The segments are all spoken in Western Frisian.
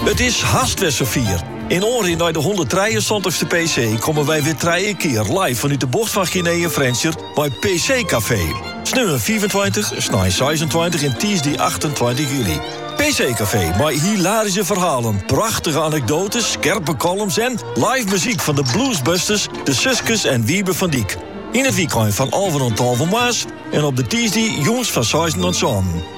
It is hast wer safier. In oanrin nei de 173ste PC komme wy weer trije keer live vanuit de bocht van Guinea en Frensjer bij PC Café. Sneeuwen 25, snij 26 en Tuesday 28 juli. PC Café, maar hilarische verhalen, prachtige anekdotes, scherpe columns en live muziek van de Bluesbusters, de Suskes en Wiebe van Diek. In het weekend van Alven en Talven Maas en op de Tuesday jongs van 6 en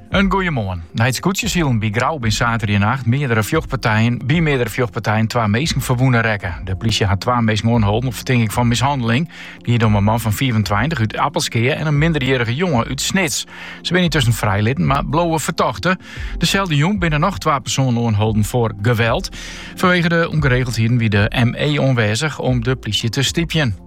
In goeie moarn. Nei it skûtsjesilen by Grou bin saterdeitenacht by fjochtpartijen by meardere fjochtpartijen twa minsken ferwûne rekke. De plysje hat twa minsken oanholden op fertinking fan mishanneling. It giet om in man fan fiifentweintich út Appelskea en in minderjierrige jonge út Snits. Se binne yntusken frijlitten, mar bleauwe fertochte. Deselde jûn binne noch twa persoanen oanholden foar geweld. Fanwege de ûngeregeldheden wie de ME oanwêzich om de plysje te stypjen.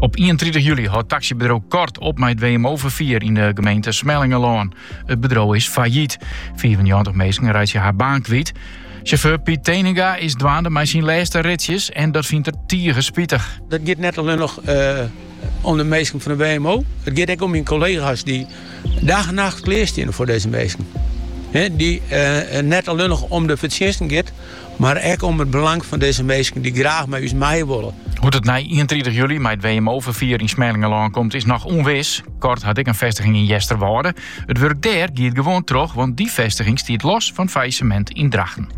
Op 31 juli hâldt taxibedriuw Kort op mei it WMO-ferfier yn de gemeente Smellingerlân. It bedriuw is failliet. 94 minsken reitsje har baan kwyt. Chauffeur Piet Teninga is dwaande mei syn lêste ritsjes en dat fynt er tige spitich. Dat giet net allinnich eh, om de minsken fan de WMO. It giet ek om myn kollega's dy't dag en nacht klearstiene foar dizze minsken. dy't eh, net allinnich om de fertsjinsten giet, Mar ek om it belang fan dizze minsken dy't graach mei ús meie wolle. Hoe't it nei ienentritich july mei it WMO-ferfier yn Smellingerlân komt is noch ûnwis. Kort hat ek in festiging yn Easterwâlde. It wurk dêr giet gewoan troch, want dy festiging stiet los fan it fallissemint yn Drachten.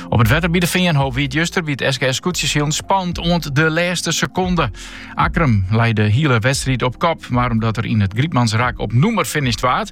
Op it wetter by de Feanhoop wie it juster by it SKS Skûtsjesilen spannend oant de lêste sekonde. Akkrum lei de hiele wedstriid op kop, mar omdat er yn it Grytmansrak op nûmer finisht waard,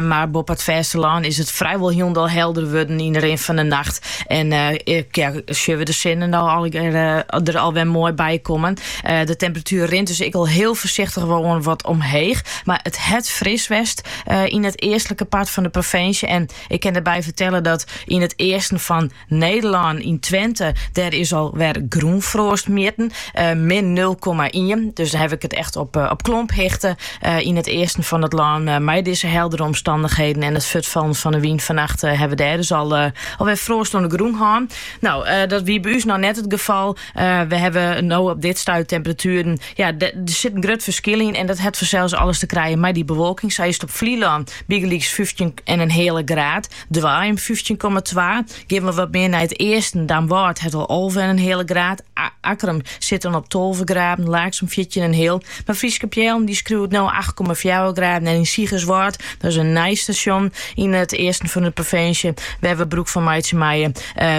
mar boppe it fêstelân is it frijwol hielendal helder wurden yn de rin fan de nacht. En ja, sjogge we de sinne no der alwer moai by kommen. De temperatuer rint dus ek al hiel foarsichtich wer wat omheech. Mar it hat fris west yn it eastlike part fan de provinsje. En ik kin derby fertelle dat yn it easten fan Nederlân yn Twente, dêr is al wer grûnfroast mjitten, min nul komma ien. Dus dan ha ik it echt op, op klomphichte yn het easten fan het lân. Mei dizze heldere omstandigheden en it fuortfallen fan de wyn fannacht hawwe we dêr dus al, al wer froast oan de grûn hân. Nou, dat wie by ús no net it gefal. We hawwe no op dit stuit temperatueren, ja, der sit in grut ferskil yn en dat hat fansels alles te krijen mei dy bewolking. Sa is it op Flylân bygelyks 15 en in heale graad. Duirum fyftjin komma twa. Gean we wat mear nei it easten, Damwâld hat al alvenenheale graad, Akkrum sit dan op tolve graden, Laaksum fjirtjinenheal. Mar Fryske Peallen dy skriuwt no acht komma fjouwer graden en yn Sigerswâld, dat is in nij stasjon yn it easten fan de provinsje wêr we brûk fan meitsje meie,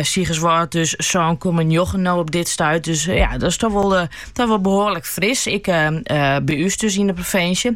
Sigerswâld dus sân komma njoggen no op dit stuit. Dus ja, dat is toch wol behoarlik fris, ek by ús dus yn de provinsje.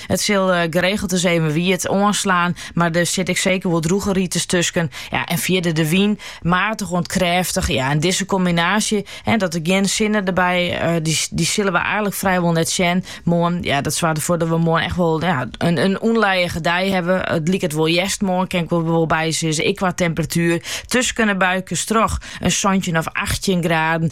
It sil geregeld ris even wiet oanslaan, mar der sit ek seker wol drûge rites tusken. Ja, en fierder de wyn, maatich oant krêftich. Ja, en dizze kombinaasje, dan der gjin sinne derby, dy sille we eigenlik frijwol net sjen moarn. Ja, dat soarget derfoar dat we moarn echt wol in ûnlijige dei hawwe. It liket wol hjerst moarn, kin ik wol by sizze, ek qua temperatuer. Tusken 'e buikes troch in santjin of achttjin graden.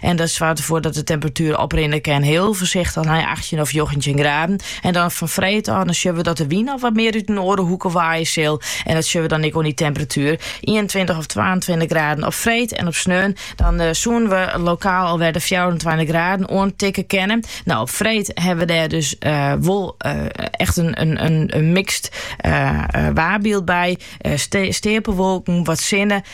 En dat soarget derfoar dat de temperatuer oprinne kin, hiel foarsichtich nei achttjin of njoggentjin graden. En dan fan freed ôf dan sjoch we dat de wyn al wat mear út in oare hoeke waaie sil. En dat sjoch we dan ek oan dy temperatuer. Ienentweintich of twaentweintich graden op freed en op sneon dan eh, soenen we lokaal alwer de fjouwerentweintich graden oantikken kennen. Nou, op freed ha we dêr dus eh, wol eh, echt in, in, in, in mikst waarbyld by. Uh, steapelwolken, wat sinne